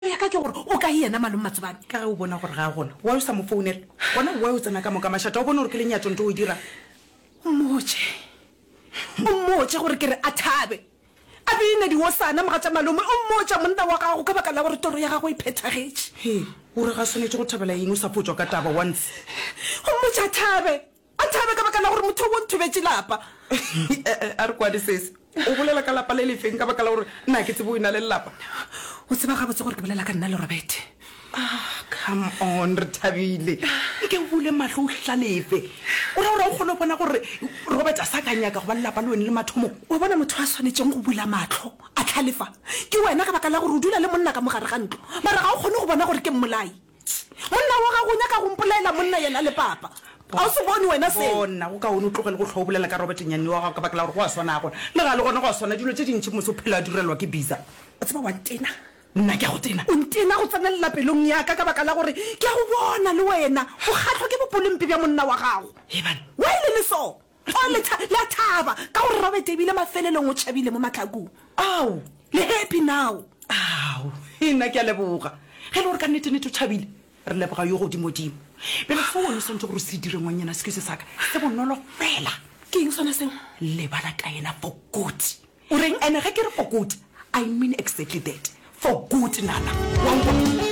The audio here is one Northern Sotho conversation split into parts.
ya ka ke gore o kae yena Malome Matsobane? Ka ge o bona gore ga a gona, why o sa mo founela? Gona why o tsena ka moka mašata? O bone gore ke lenyatšo nto o e dirang? O mmotše, o mmotše gore ke re a thabe a bine diosana mogatša Malome. O mmotša monna wa gago ka baka la gore toro ya gagwe e phethagetše. Hee, o re ga a swanetše go thabela eng o sa photswa ka taba wa ntshe? O mmotše a thabe. A thabe ka baka la gore motho wo nthobetše lapa. E-e, a re kwane sese. O bolela ka lapa le le feng ka baka la gore nna ga ke tsebe o ena le lelapa? O tseba gabotse gore ke bolela ka nna le Robert. Ah, come on, re thabile. Nke o bule mahlo o hlalefe. O ra gore o kgone go bona gore Robert a sa ka nyaka go ba lelapa le wene le mathomo. Wa bona motho a swanetšeng go bula mahlo a hlalefa ke wena ka baka la gore o dula le monna ka mogare ga ntlo mara ga o kgone go bona gore ke mmolai. Monna wa gago o nyaka go mpolaela monna yena le papa. Ga o se bone wena seo. Gona go kaone o tlogele go hlwa o bolela ka Robert nyanne wa gago ka baka la gore go a swana a gona. Le ga le gona go a swana dilo tše dintši mose o phela a direlwa ke Biza. O tseba wa ntena. Nna ke a go tena? O ntena go tsenelela pelong ya ka ka baka la gore ke a go bona le wena o kgahlwa ke bopolempe bja monna wa gago. Heban. Why le le so? Ao, letha la thaba ka gore Robert ebile mafelelong o tšhabile mo mahlakong. Ao, le happy now. Ao, nna ke a leboga. Ge e le gore ka nnete-nnete o tšhabile, re leboga yo godimodimo. Bjale seo wena o swanetše gore o se dire, ngwanyana, se kuse sa ka, se bonolo fela. Ke eng sona seo? Lebala ka yena for good. O reng? And ge ke re for good, I mean exactly that. For good, nana. Wa nkwa?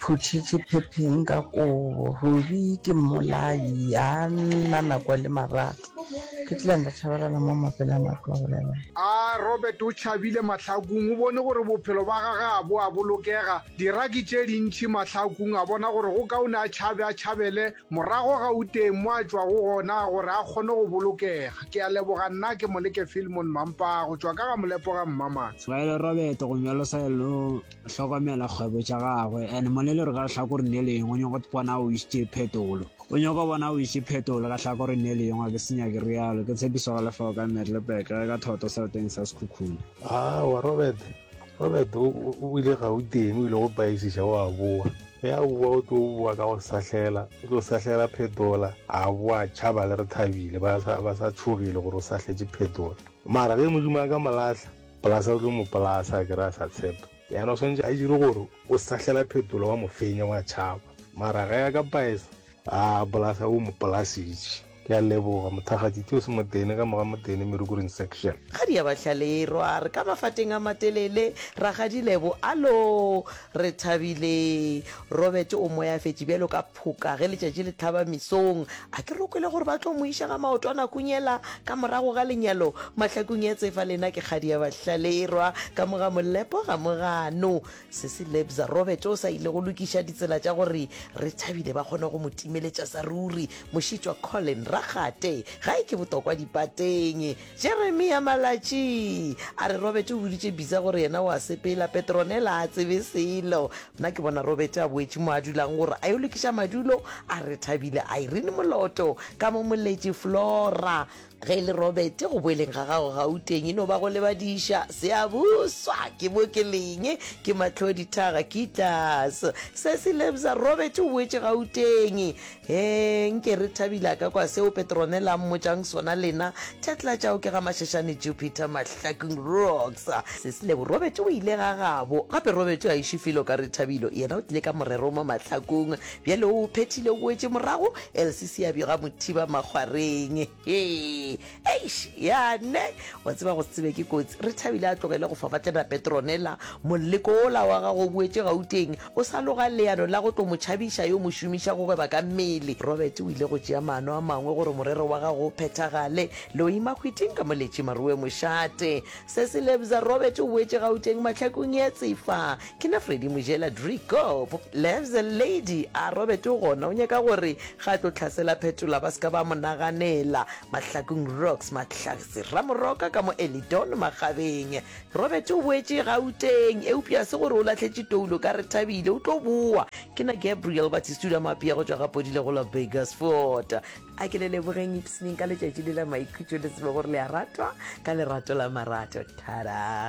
Phuthitše phepheng ka kobo. Ruri ke mmolai, a nna nako le marato. Ke tla nda tšhabalela mo mapele a matlo a bolela. A Robert o tšhabile mahlakung, o bone gore bophelo ba gage ga bo a bolokega. Diraki tše dintši mahlakung, a bona gore go kaone a tšhabe, a tšhabele morago Gauteng mo a tšwago gona gore a kgone go bolokega. Ke a leboga nna ke Moleke Filmon Mampaa go tšwa ka ga Molepo ga Mmamatsha. Ba ile Robert go nyolosa e le. hlokomela kgwebo tša gagwe and molele re ka hlakoring le lengwe o nyoko bona o isitše phetolo o nyoko bona o isitše phetolo ka hlakoring le lengwe ke senya ke realo ke tshepiso ga lefao ka merlepek ge ka thoto sereteng sa sekhukhune aowa robert robert o ile ga o teng o ile go paisiša o a boa ge a boa o tlo boa ka go sahlela o tlo sahlela phetola a boa tšhaba le re thabile ba sa tšhogile gore o sahletše phetola mara ge modimo a ka molatlha Polasa o tlo mo polasa a kere a sa tshepa. Yana o swantše a dire gore o sahlela phetolo wa mo fenya wa tšhaba. Mara ge ya ka paesa. Haa polasa o mo polasitše. Ke a leboga mothakgatši Theo Semotene ka moga Motene Merukuring section. Kgadi ya Bahlalirwa re ka mafateng a matelele, Rakgadi Lebo, Alo! Re thabile. Robert o moyafetše bjalo ka. Phoka ge letšatši le tlhaba mesong, a ke re o kwele gore ba tlo mo iša ga maotwana kunyela ka morago ga lenyalo mahlakong ya tsefa lena ke kgadi ya bahlalirwa ka mo ga molepo ga mogano sesi lebza robert o sa ile go lokiša ditsela tša gore re thabile ba kgone go mo timeletša sa ruri mošitšwa colin rakgate ga e ke botokwa dipateng Jeremia Malatši a re, Robert o boditše Bitsa gore yena o a sepela. Petronella a tsebe selo. Nna ke bona Robert a boetše mo a dulang gore a yo lokiša madulo a Rethabile. Irene Moloto ka mo moletši Flora. Ge e le Robert, go boeleng ga gago Gauteng e no ba go lebadiša. Seabuswa, ke mo ke leng, ke Matlodithaga, Kittlas. Cecil Ebza, Robert o boetše Gauteng. Hee, nke re Thabile a ka kwa seo Petronella a mmotšang sona, lena Tetla tšao ke ga Mashashane Jupiter Mahlakung Rocks. Ses'lebo, Robert o ile ga gabo. Gape Robert o a ešo felo ka re Thabilo, yena o tlile ka morero mo Mahlakong. Bjale o o phethile o boetše morago, Elsie Seabjega Mothiba Makgwareng. Hee. eish yane wa tseba go tsebe ke kotsi re thabile a tlogele go fafatlela petronela moleko ola wa gago boetse gauteng o sa loga leano la go tlo mo tšhabiša yo mo šomiša go gweba ka mmele robert o ile go tšea maano a mangwe gore morero wa gago o phethagale le o ima kgwiting ka moletše maruwe mošate se se lebza robert o boetse gauteng mahlakong ya tsefa Ke na Freddy Mojela Driekop. Lefs a lady a Robert o gona o nyaka gore ga tlo tlhasela phetola ba ska ba mo naganela. Mahlakong rocks Mahlatse Ramoroka ka mo Elidon Magabeng. Robert o boetše Gauteng eupša se gore o lahletše toulo ka Rethabile o tlo boa. Ke na Gabriel Batistula Mapea go tšwa ga Podile go la Burgersfort. A ke le lebogeng ipsneng ka letšatši le la maikhutšo le tsebe gore le a ratwa ka lerato la marato. Tada.